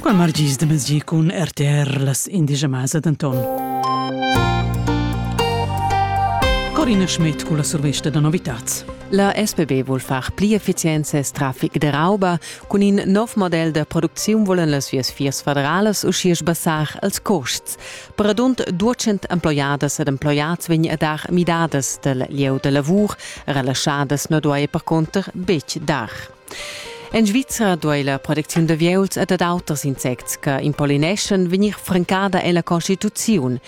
Qua margis de mezgi cun RTR las indigemas d'Anton. Corina Schmidt con la survesta da novitats. La SPB vuol far pli efficienza e traffic de rauba. Cun in nov model de producziun volen las vias fiers federalas uschia sbassar els costs. Per radund 200 emploiadas ed emploiats vegn a dar midadas del lieu de lavur, relaschadas no duai per conter betg dar. En Svizra duei la protecziun d'avieuls e dad auters insects che impolineschan vegnir francada ella Constituziun.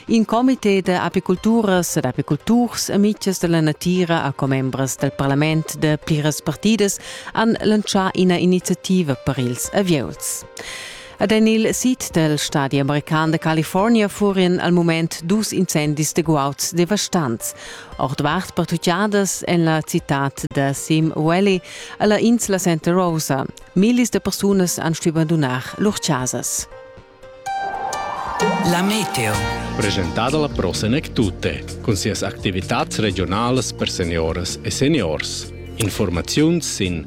In comite da apiculturas ed apiculturs e mitgs dalla natira a commembras dal parlament da pliras partidas han lantschà ina iniziativa per ils avieuls. Ed en il sid dal stadi american da California furien al mument dus incendis de guauds devastants. Ordvart pertucciadas en la citad da Sim Valley alla insla Santa Rosa. Millis de persunas han stuì abandonar lur casas. La meteo. Presentada la prosenek tutte, con sias activitats regionales per seniores e seniors. Informaziuns in